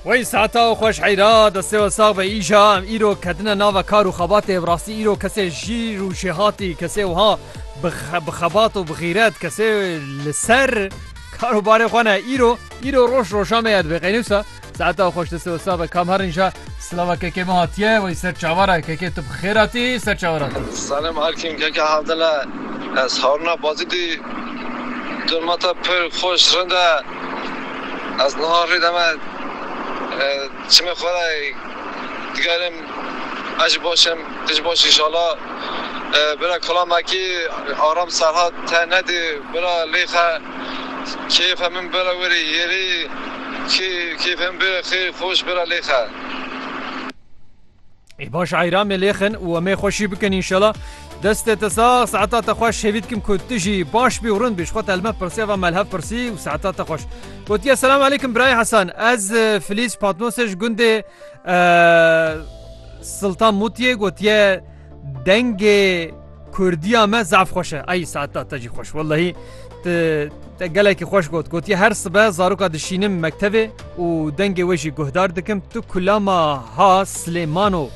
Wey saata û xweş heyra destê we sax be îja em îro ketine nava kar û xebatê bi rastî îro kesê jîr û jêhatî kesê wiha bi xebat û bi xîret kesê li ser karobarê xwe ne îro îro roj roja me ya dibê qeynûsa saeta xweş destê we sax be kam herin ja Slava keke me hatiye wey ser çavara keke tu bi xêr hatî ser çavara tu. Selam Erkin keke Havdele ez Haruna Bazî dî dema te pir xweş rind e ez niha rê de me çimê xwe de digerim ez jî baş im tu jî baş înşala bira kula me kî Aram Serhat te nedî bira lêxe kêfe min bira were yêrî Kê kêfên bi xê xweş bira lêxe. Ê baş eyra me lêxin û emê xwe şî bikin înşela. Destê te sax, saeta te xweş hêvî dikim ku tu jî baş bî û rind bî ji xwe telme pirsî eva melhev pirsî û saeta te xweş. Gotiye selam aleykum birayê Hesan ez Filîs Patnosê ji gundê Siltan Mûtiyê gotiye Dengê Kurdiya me zaf xweş e ay saeta te jî xweş wellahî te gelekî xweş got gotiye her sibe zaroka dişînim mektevê û dengê wê jî guhdar dikim tu kulama ha Silêmano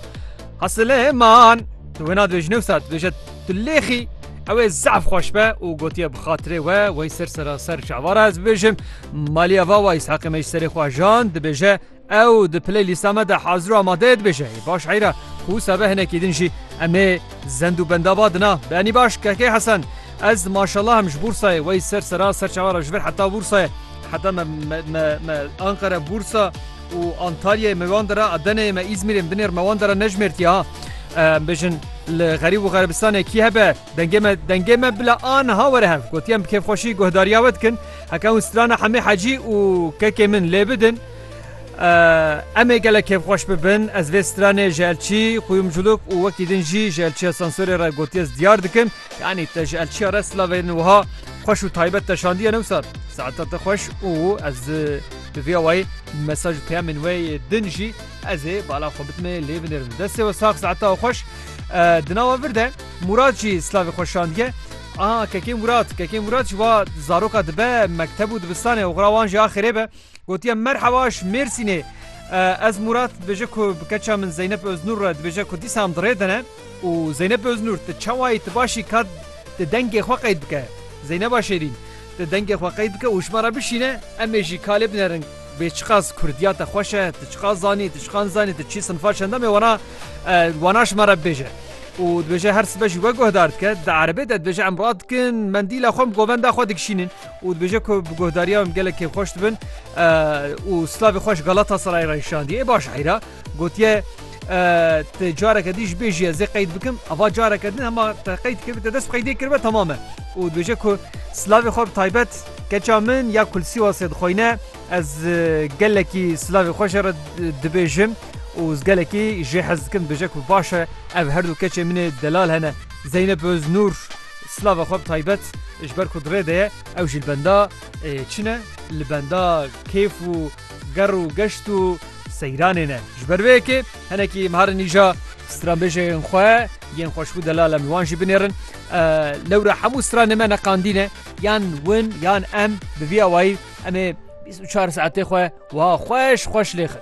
ha Silêman tu wê nadibê ji newsa dibêje tu lêxî ew ê zaf xweş be û gotiye bi xatirê we wey ser sera ser çavara ez bibêjim maliya va wa îshaqê me ji serê xwe jan dibêje Ew di playlîsta me de hazir û amade ye dibêje, Ê baş heyra ku wisa be hinekî din jî em ê zend û benda ba dina. Beyanî baş Kekê Hesen Ez maşallah em ji Bûrsayê wey ser seran ser çawa re ji vir heta Bûrsayê heta me me me Anqere Bûrsa û Antalyayê me wan de re Adeneyê me Îzmîrê binê re me wan de re nejmêrtiye ha em bêjin li xerîb û xerebistanê kî hebe dengê me dengê me bila aniha were hev gotiyem bi kêfxweşî guhdariya we dikin heke hûn strana Hemê Hecî û kekê min lê bidin. Em ê gelek kêfxweş bibin. Ez vê stranê ji elçî xuyum culuk û wekî din jî ji elçiya sansorê re gotiye ez diyar dikim. Yanî te ji elçiya re silavê din wiha xweş û taybet te şandiye newsa saeta te xweş û ez bi vî awayî mesaj û peyamên wê yê din jî ez ê bala xwe bitime lê binêrim. Destê we sax saeta we xweş. Di nawa vir de Mûrat jî silavê xwe şandiye. Aa kekê Mûrat kekê Mûrat ji wa zaroka dibe mekteb û dibistanê oxira wan jî axirê be. Gotiye merheba ji Mêrsînê. Ez Murat dibêje ku bi keça min Zeynep Öznur re dibêje ku dîsa em di rê de ne. Û Zeynep Öznur tu çawayî tu başî ka tu dengê xwe qeyd bike. Zeyneba Şêrîn tu dengê xwe qeyd bike û ji me re bişîne em ê jî ka lê binerin bê çiqas kurdiya te xweş e, tu çiqas zanî, tu çiqas nizanî, tu çi sinfa çend em ê wana wana ji me re bibêje. Û dibêje her sibe jî we guhdar dike. Di erebê de dibêje em radikin mendîla xwe em govenda xwe dikişînin. û dibêje ku bi guhdariya wê em gelek kêfxweş dibin û silavê xwe ji Galatasarayê re nîşandiye. Ê baş heyra gotiye Ti careke dî ji bêjî ez ê qeyd bikim ava careke din hema te qeyd kir te dest bi qeydê kiribe temam e û dibêje ku silavê xwe bi taybet keça min ya kulsîwasê dixweyne ez gelekî silavê xwe jê re dibêjim û ez gelekî jê hez dikim dibêje ku baş e ev herdû keçê min ê delal hene Zeynep Öznur. Silava xwe bi taybet ji ber ku di rê de ye, ew jî li benda çi ne? Li benda kêf û ger û geşt û seyranê ne. Ji ber vê yekê hinekî miharin îja stranbêjên xwe yên xweşbû delal em li wan jî binêrin. Lewra hemû stranên me ne qandî ne, yan win yan em bi vî awayî em ê bîst û çar saetê xwe wiha xweş xweş lêxin.